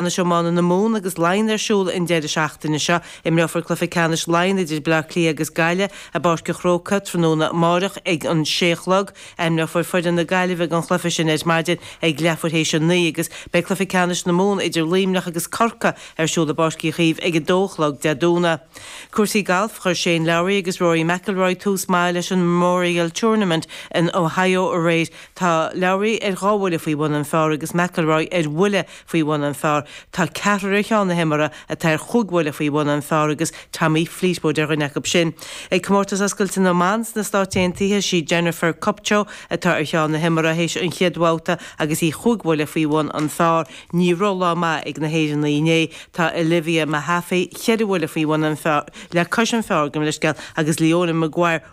Anois iomáint na Mumhan agus Laighean ar siúl an deireadh seachtaine seo. Imreofar cluiche ceannais Laighean idir Baile Átha Cliath agus Gaillimh i bPáirc an Chrócaigh tráthnóna amárach ag an sé a chlog. Ainmneofar foireann na Gaillimhe don chluiche sin ar maidin ag leathuair théis a naoi agus beidh cluiche ceannais na Mumhan idir Luimneach agus Corcaigh ar siúl i bPáirc Uí Chaoimh ag a dó a chlog Dé Domhnaigh. Cúrsaí Gailf, Chuir Shane Lowry agus Rory McIlroy tús maith leis an Memorial Tournament in Ohio aréir. Tá Lowry ar dhá bhuille faoi bhun an phár agus McIlroy ar bhuille faoi bhun an phar. Tá ceathrar ar cheann na himeartha atá ar chúig bhuille faoi bhun an phar agus Tommy Fleetwood ar dhuine acu sin. Ag Comórtas Oscailte na mBan sna Stáit Aontaithe sí Jennifer Kupcho atá ar cheann na himeartha théis an chéad bhabhta agus í chúig bhuille faoi bhun an phar. Ní raibh lá maith ag na hÉireannaigh inné. Tá Olivia Mehaffey, cheithre bhuille faoi bhun an phar, le cois an phar, gabh mo leithscéal, agus Leona Maguire,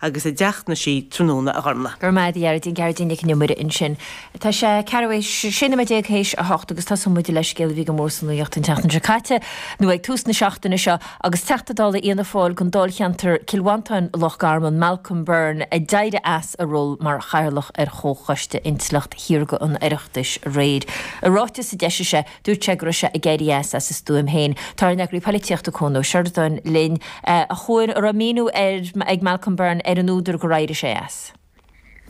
agus ag teacht ina suí tráthnóna, a Ghormfhlaith. Grma a Ghearóidín, Gearóidín Nic An Iomaire ansin. Tá sé ceathrú théis, sé nóiméad déag théis a hocht agus tosaíonn muid le scéal a bhí go mór sa nuaíocht an tseachtain seo caite, nó ag tús na seachtaine seo, agus Teachta Dála Fhianna Fáil don Dáilcheantar Cill Mhantáin, Loch Garman, Malcolm Byrne, a d'éirigh as a ról mar Chathaoirleach ar Chomhchoiste Intleacht Shaorga an Oireachtais aréir. I ráiteas a d'eisigh sé, Dúirt sé go raibh sé ag éirí as as a stuaim féin. Tá ár n-eagraí polaitíochta Cuan Ó Seireadáin linn. A Chuain, an raibh míniú ag Malcolm Byrne ar an údar gur éirigh sé as?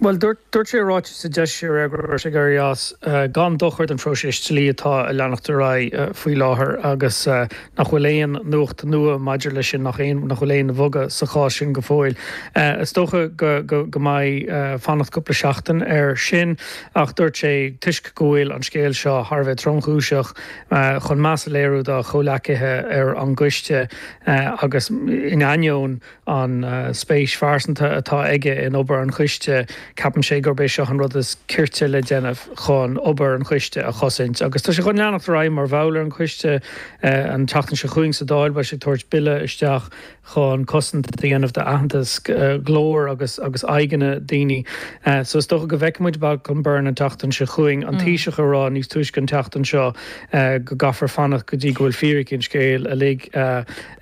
Bhuel, dúirt sé i ráiteas a d'eisigh sé aréir go raibh sé ag éirí as gan dochar don phróiseas dlí atá ag leanacht ar aghaidh faoi láthair agus nach bhfuil aon nuacht nua maidir leis sin, nach aon, nach bhfuil aon bhogadh sa chás sin go fóill. Is dócha go mbeidh fanacht cúpla seachtain air sin. Ach dúirt sé, toisc go bhfuil an scéal seo thar a bheith tromchúiseach, chun meas a léiriú dá chomhleacaithe ar an gcoiste agus in ainneoin an spéis phearsanta atá aige in obair an choiste, ceapann sé gurb é seo an rud is cirte le déanamh chun obair an choiste a chosaint. Agus tá sé chun leanacht ar aghaidh mar bhall ar an choiste. An tseachtain seo chugainn sa Dáil beidh sé ag tabhairt Bille isteach chun cosaint a dhéanamh d'aitheantas, glór agus agus aghaidheanna daoine. So is dócha go bhfeicfimid Malcolm Byrne an tseachtain seo chugainn, an Taoiseach ag rá níos túisce an tseachtain seo go gcaithfear fanacht go dtí go bhfuil fíricí an scéil uilig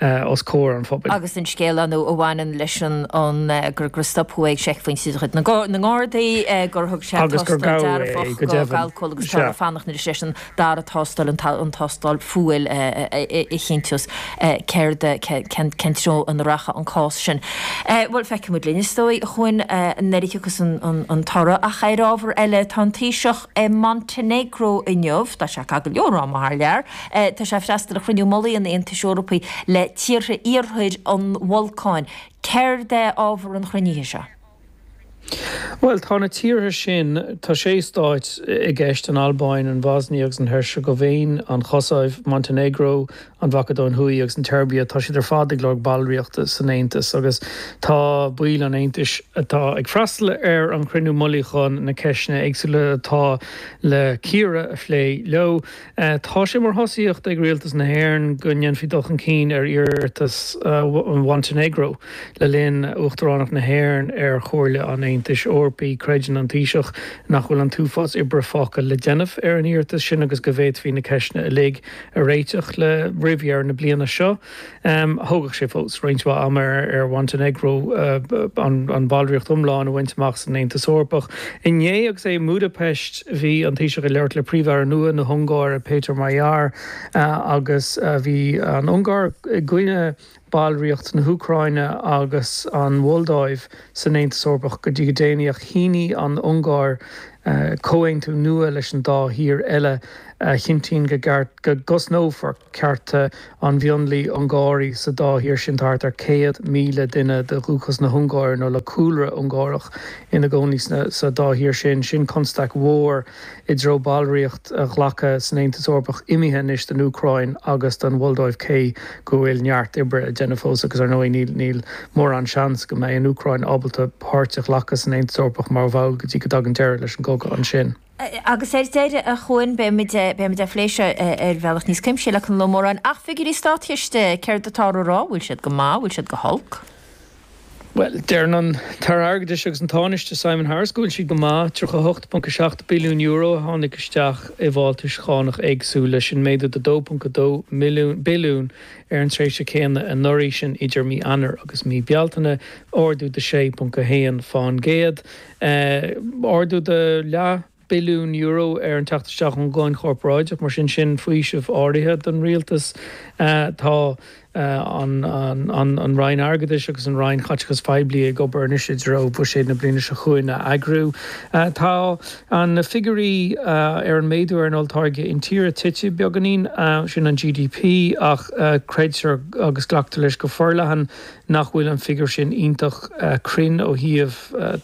os comhair an phobail. Agus an scéal a bhaineann leis an an gur gur stopadh é ag seicphointe de chuid na nGardaí, gur thug sé tástáil dearfach do alcól agus tú ag fanacht anois leis an dara tástáil, an tástáil fuail a chinnteos céard, cén, cén treo ina rachadh an cás sin. Bhuel, feicfimid linn, is dóigh. a Chuain, nuair a thiocfas an toradh. Ach ar ábhar eile, tá an Taoiseach i Montenegro inniu, tá sé ag cur go leor ama thar lear, tá sé ag freastal ar Chruinniú Mullaigh an Aontais Eorpaí le tíortha iarthair na mBalcán. Céard é ábhar an chruinnithe seo? Bhuel, tá na tíortha sin, tá sé stáit i gceist, an Albáin, an Bhosnia agus an Heirseagaivéin, an Chosaiv, Montainéagró, an Mhacadóin Thuaidh agus an tSeirbia, tá siad ar fad ag lorg ballraíochta san Aontas agus tá baill an Aontais, atá ag freastal ar an chruinniú mullaigh chun na ceisteanna éagsúla atá le cíoradh a phlé leo. Tá sé mar thosaíocht ag Rialtas na hÉireann go ndéanfaí dul chun cinn ar iarratas Mhontainéagró le linn Uachtaránacht na hÉireann ar Chomhairle an Aontais Eorpaigh. Creideann an Taoiseach nach bhfuil an t-uafás oibre fágtha le déanamh ar an iarratas sin agus go bhféadfaí na ceisteanna uilig a réiteach roimh dheireadh na bliana seo. Thógfadh sé fós roinnt mhaith ama ar Mhontainéagró an bhallraíocht iomlán a bhaint amach san Aontas Eorpach. Inné agus é i mBudapest bhí an Taoiseach ag labhairt le Príomh-Aire nua na hUngáire, Péter Magyar, agus bhí an Ungáir i gcoinne ballraíocht na hÚcráine agus an Mholdóiv san Aontas Eorpach go dtí go déanaí ach shínigh an Ungáir comhaontú nua leis an dá thír eile a chinntíonn go gceart go gcosnófar cearta An mhionlaigh Ungáraigh sa dá thír sin, thart ar 100,000 duine de dhúchas na hUngáire nó le cúlra Ungárach ina gcónaí sa dá thír sin, sin constaic mhór i dtreo ballraíocht a ghlacadh san Aontas Eorpach imithe anois don Úcráin agus don Mholdóiv cé go bhfuil neart oibre le déanamh fós agus ar ndóigh níl mórán seans go mbeidh an Úcráin ábalta páirt a ghlacadh san Aontas Eorpach mar bhall go dtí go dtagann deireadh leis an gcogadh ansin. Agus ar deireadh, a Chuan, beidh muid beidh muid á phlé seo ar bhealach níos cuimsithí le Conall Ó Móráin, ach figiúirí Státchiste, céard atá á rá, bhfuil siad go maith, bhfuil siad go holc? Bhuel, deireann an tAire Airgeadais agus an Tánaiste Simon Harris go bhfuil siad go maith, €38.7 billiún a tháinig isteach i bhfáltais chánach éagsúla, sin méadú de €2.2 milliún billiún ar an tréimhse céanna anuraidh, sin idir mí Eanáir agus mí Bealtaine, ardú de 6.1%. Ardú de leath billiún euro ar an teacht isteach ón gcáin chorparáideach, mar sin sin faoiseamh áirithe don Rialtas. Tá an Roinn Airgeadais agus an Roinn Chaiteachais Phoiblí ag obair anois i dtreo Buiséad na bliana seo chugainn a eagrú. Tá na figiúirí ar an méadú ar an Olltáirge Intíre tite beagáinín, sin an GDP, ach creidtear agus glactar leis go forleathan Nach bhfuil an figiúr sin iontach cruinn ó thaobh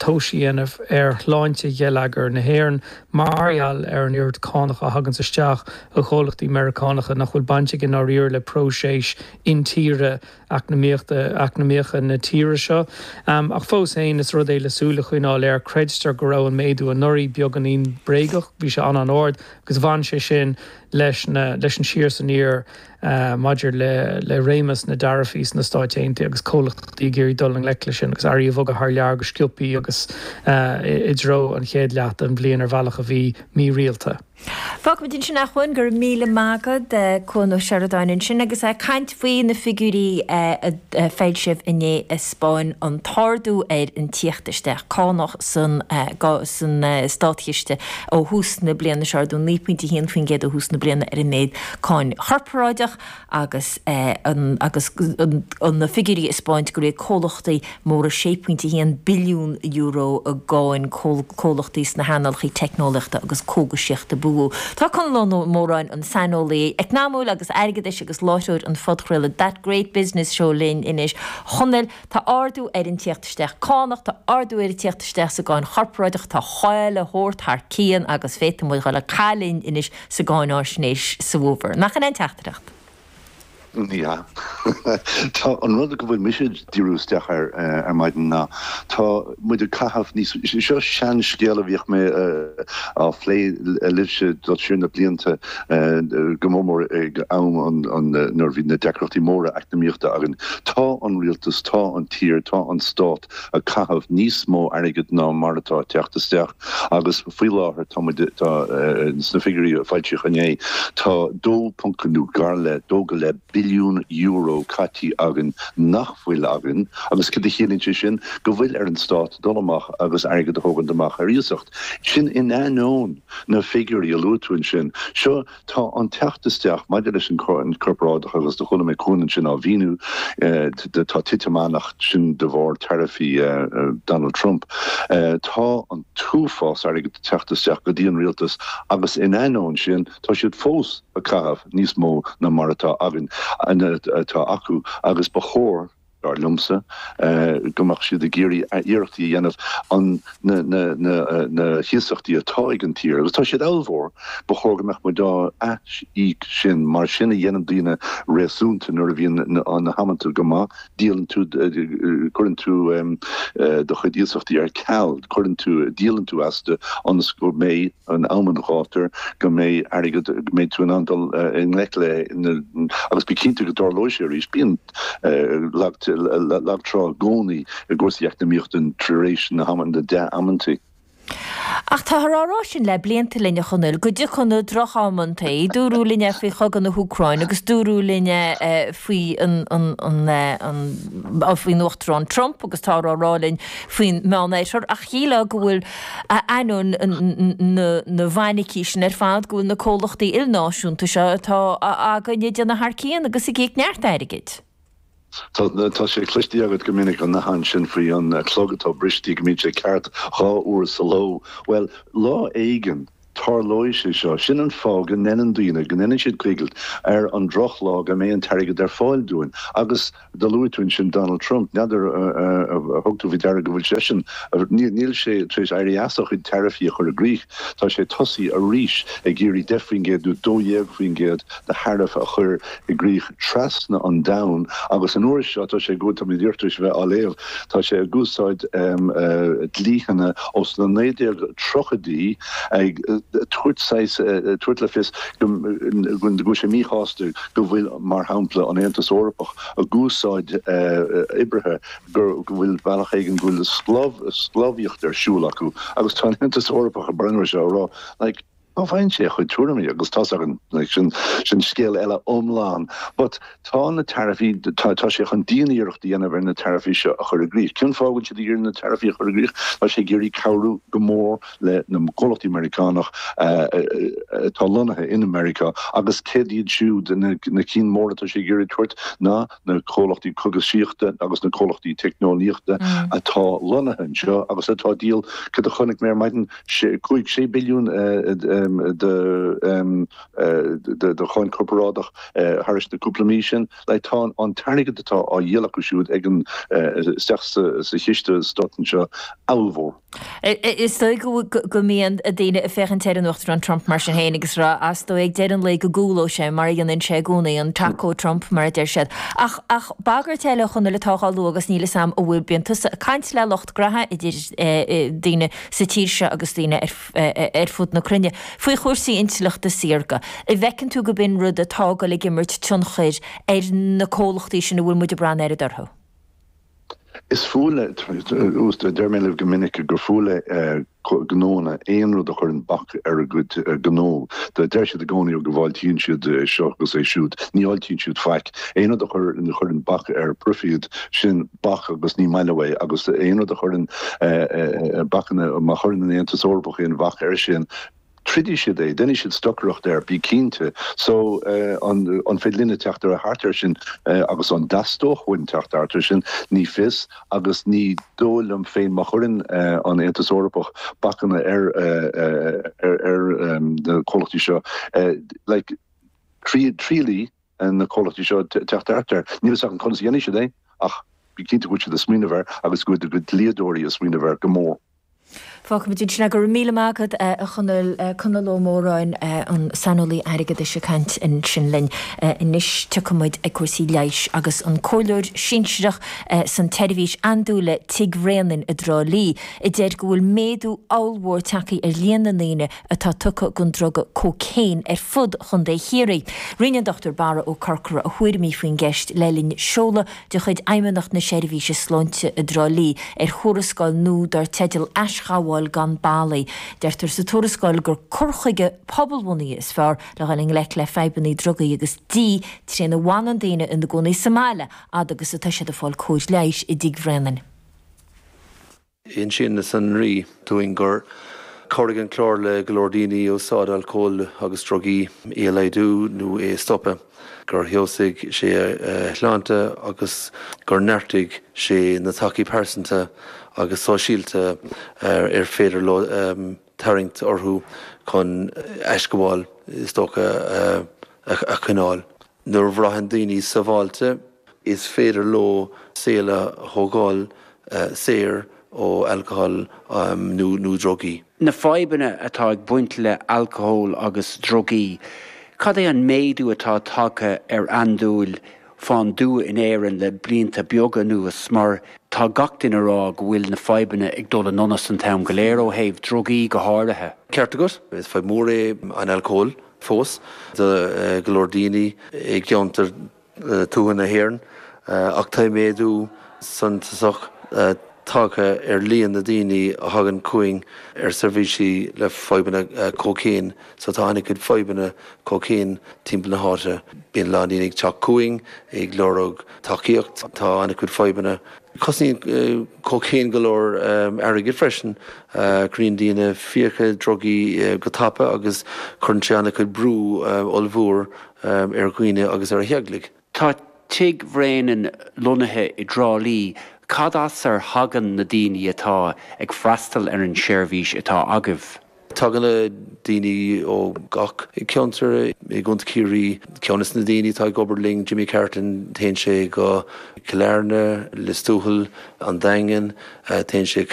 tomhas a dhéanamh ar shláinte gheilleagar na hÉireann mar gheall ar an oiread cánach a thaganns isteach ó chomhlachtaí Meiriceánacha nach bhfuil baint aige i ndáiríre le próiseas intíre eacnamaíochta eacnamaíocha na tíre seo. Ach fós féin, is rud é le súil a choinneáil air. Creidtear go raibh an méadú anuraidh beagáinín bréagach, bhí sé an-an-ard agus bhain sé sin leis an leis an siar is aniar. maidir le réimeas na dtaraifí sna Stáit Aontaithe agus comhlachtaí ag iarraidh dul i ngleic leis sin agus earraí a bhogadh thar lear go sciobtha agus i dtreo an chéad leath den bhliain ar bhealach a bhí mí-rialta. Fágfaimid ansin é, a Chuain, go raibh míle maith agat, Cuan Ó Seireadáin ansin agus é ag caint faoi na figiúirí a foilsíodh inné a 'spáin an t-ardú ar an tíocht isteach cánach san Státchiste ó thús na bliana. Is ardú 9.1% ó thús na bliana ar an méad cáin chorparáideach agus an agus an na figiúirí a 'spáint gur íoc comhlachtaí móra €6.1 billiún i gcáin, comhlachtaí sna hearnálacha teicneolaíochta agus cógaisíochta ba mhó. Tá Conall Ó Móráin, an saineolaí eacnamaíochta agus airgeadais agus láithreoir an phodchraolta That Great Business Show linn anois. Chonaill, Tá ardú ar an tíocht isteach cánach, tá ardú ar an tíocht isteach sa gcáin chorparáideach, tá chaon rud thar cionn agus féadfaimid dul ag caitheamh anois sa gcáinfháisnéis sa bhfómhar. Nach in í an teachtaireacht? Tá an rud go bhfuil mise ag díriú isteach air ar maidin ná tá muid ag caitheamh níos mó, seo sean scéal a bhíodh mé á phlé libhse le linn na blianta go mór mór ag am nuair a bhí na deacrachtaí móra eacnamaíochta againn. Tá an rialtas, tá an tír, tá an stát ag caitheamh níos mó airgead ná mar atá ag teacht isteach agus faoi láthair tá muid, tá, sna figiúirí a foilsíodh inné, tá dó ponc nó gar le, dó go leith billiún euro caite againn nach bhfuil againn agus cad a chiallaíonn sé sin? Go bhfuil ar an Stát dul amach agus airgead a thógaint amach ar iasacht. Sin in ainneoin na figiúirí a luaigh tú ansin. Seo. Tá an teacht isteach maidir leis an gcáin chorparáideach agus do chuala mé Cuan ansin á mhíniú, tá titim ann ach sin de bharr taraifí Donald Trump. Tá an t-uafás airgid ag teacht isteach go dtí an Rialtas agus in ainneoin sin tá siad fós ag caitheamh níos mó ná mar atá againn, atá acu agus ba chóir. Dar liomsa go mbeadh siad ag iarraidh a iarrachtaí a dhéanamh an na hiasachtaí atá ag an tír agus tá siad ollmhór. Ba chóir go mbeadh muid á ath-íoc sin. Mar sin a dhéanann daoine réasúnta nuair a bhíonn na hamanta go maith. Díolann tú cuireann tú do chuid iasachtaí ar ceal. Cuireann tú díolann tú astu ionas go mbeidh in am an ghátair go mbeidh airgead, go mbeidh tú in ann dul i ngleic le, agus bí cinnte go dtarlóidh sé arís, bíonn lag, lag trá i gcónaí i gcúrsaí eacnamaíochta tar éis na hamanna, na dea-amantaí. Ach táthar á rá sin le blianta linn, a Chonaill, go dtiocfadh na droch-amantaí. Dúradh linn é faoi chogadh na hÚcráine agus dúradh linn é faoi an, an, an, an, faoin Uachtarán Trump agus táthar á rá linn faoin Meánoirthear ach shílfeá go bhfuil ainneoin na bhfainicí sin ar fad go bhfuil na comhlachtaí ilnáisiúnta seo atá againne ag déanamh thar cionn agus ag íoc neart airgid. Tá sé cloiste agat go minic an nathán sin faoi an clog atá briste go mbíonn sé ceart dhá uair sa ló. Bhuel, lá éigin Tarlóidh sé seo. Sin an fáth go ndeineann daoine, go ndeineann siad coigilt ar an drochlá go mbeidh an t-airgead ar fáil dúinn. Agus do luaigh tú ansin Donald Trump. N'fheadar ar thug tú faoi deara go bhfuil seisean, níl sé tar éis éirí as a chuid taraifí a chur i gcrích. Tá sé tosaithe arís ag iarraidh 10% nó 12% de tharaif a chur i gcrích trasna an domhain agus an uair seo tá sé go bhfuil tá mé díreach tar éis a bheith á léamh tá sé ag úsáid dlítheanna ós na 1930idí ag tabhairt saghas tabhairt le fios go bhfuil sé míshásta go bhfuil mar shampla an Aontas Eorpach ag úsáid oibrithe go bhfuil bealach éigin go bhfuil sclábh sclábhaíocht ar siúl acu agus tá an Aontas Eorpach ag breathnú ar seo ag rá like Cá bhfaigheann sé a chuid tuairimí, agus tá's agat, sin scéal eile iomlán. But tá na taraifí, tá sé chun dian-iarracht a dhéanamh ar na taraifí seo a chur i gcrích. Cén fáth go bhfuil sé ag iarraidh na taraifí a chur i gcrích? Tá sé ag iarraidh cabhrú go mór le na comhlachtaí Meiriceánacha atá lonnaithe in Meiriceá agus céard iad siúd na cinn móra atá sé ag iarraidh tabhairt ná, na comhlachtaí cógaisíochta agus na comhlachtaí teicneolaíochta atá lonnaithe anseo agus atá ag díol, cad a chonaic mé ar maidin, cúig, sé billiún de cháin chorparáideach thar na cúpla mí sin. Like, tá an t-airgead atá á dhíol acu siúd ag an, isteach sa Chiste Stáit anseo, ollmhór. Is dóigh go mbeidh daoine ag féachaint ar an Uachtarán Trump mar sin féin agus ag rá, A's dóigh, ag deireadh an lae go gcúlóidh sé, mar a dhéanann sé i gcónaí, an Taco Trump, mar a deir siad. Ach bagairt eile a Chonaill atá á lua agus níl 'fhios a'm a' bhfuil, bíonn tusa ag caint le lucht graithe idir daoine sa tír seo agus daoine ar fud na cruinne, faoi chúrsaí intleachta saorga. An bhfeiceann tú gurb in rud atá ag goil ag imirt tionchair ar na comhlachtaí sin a bhfuil muid ag braith an oiread orthu? Is fuath leo, deirim libh go minic gur fuath le gnóanna aon rud a chuireann bac ar a gcuid gnó. Deir siad i gcónaí go bhfáiltíonn siad é seo agus é siúd. Ní fháiltíonn siad faic. Aon rud a chuireann bac ar proifid, sin bac agus ní maith leo é. Agus aon rud a chuireann bacanna, má chuireann an Aontas Eorpach aon bhac ar sin, troidfidh siad é, déanfaidh siad stocaireacht air, bí cinnte. So, an féidir linne teacht thart air sin agus an dteastaíonn uainn teacht thart air sin? Ní fios agus ní dóigh liom féin má chuireann an Aontas Eorpach bacanna ar na comhlachtaí seo, like, triailfidh na comhlachtaí seo teacht thart air. Níl 'fhios agam conas a dhéanfaidh siad é ach bí cinnte go bhfuil siad ag smaoineamh air agus go bhfuil dlíodóirí ag smaoineamh air go mór. Fágfaimid ansin é. Go raibh míle maith agat, a Chonaill. Conall Ó Móráin, an saineolaí airgeadais ag caint ansin linn. Anois rachaimid ag cúrsaí leighis agus an comhairleoir sinsireach san tSeirbhís Andúile Tig Bhréanainn i dTrá Lí a deir go bhfuil méadú ollmhór tagtha ar líon na ndaoine atá tugtha gon druga cócaon ar fud Chondae Chiarraí. Roinn an Dr. Barra Ó Corcora a thuairimí faoin gceist le linn seoladh de chuid Fheidhmeannacht na Seirbhíse Sláinte i dTrá Lí ar thuarascáil nua dar teideal 'Aisghabháil gan Ballaí'. Deirtear sa tuarascáil gur cur chuige pobalbhunaithe is fearr le dhul i ngleic le fadhbanna drugaí agus dí trína bhfanann daoine ina gcónaí sa mbaile fhad agus atá siad ag fáil cóir leighis i dTigh Bhréanainn. Insíonn na sonraí dúinn gur chabhraigh an clár le go leor daoine úsáid alcóil agus drugaí a laghdú nó é a stopadh, gur fheabhsaigh sé a shláinte agus gur neartaigh sé na tacaí pearsanta agus sóisialta ar féidir leo tarraingt orthu chun aisghabháil is dócha a choinneáil. Nuair a bhraitheann daoine sabháilte, is féidir leo saol a thógáil saor ó alcól nó drugaí. Na fadhbanna atá ag baint le alcól agus drugaí, cad é an méadú atá tagtha ar andúil fán dtuath in Éirinn le blianta beaga anuas mar tá gach duine a rá go bhfuil na fadhbanna ag dul i ndonas an t-am go léir ó thaobh drugaí go háirithe. Ceart agat. Is fadhb mór é an alcól. fós do go leor daoine i gceantair tuaithe na hÉireann ach tá méadú suntasach tagtha ar líon na daoine a thagann chugainn ar seirbhísí le fadhbanna cócaon so tá an-chuid fadhbanna cócaon timpeall na háite. Bíonn a lán daoine ag teacht chugainn ag lorg tacaíocht, tá an-chuid fadhbanna. Cosnaíonn cócaon go leor airgid freisin. Cruinníonn daoine fiacha drugaí go tapa agus cuireann sé an-chuid brú ollmhór ar dhaoine agus ar theaghlaigh. Tá tigh Bhréanainn lonnaithe i dTrá Lí, cad as ar thagann na daoine atá ag freastal ar an seirbhís atá agaibh? Tagann na daoine ó gach ceantar i gContae Ciarraí. Ceann de na daoine atá ag obair linn, Jimmy Carton, téann sé go Cill Airne, Lios Tuathail, An Daingean, téann sé.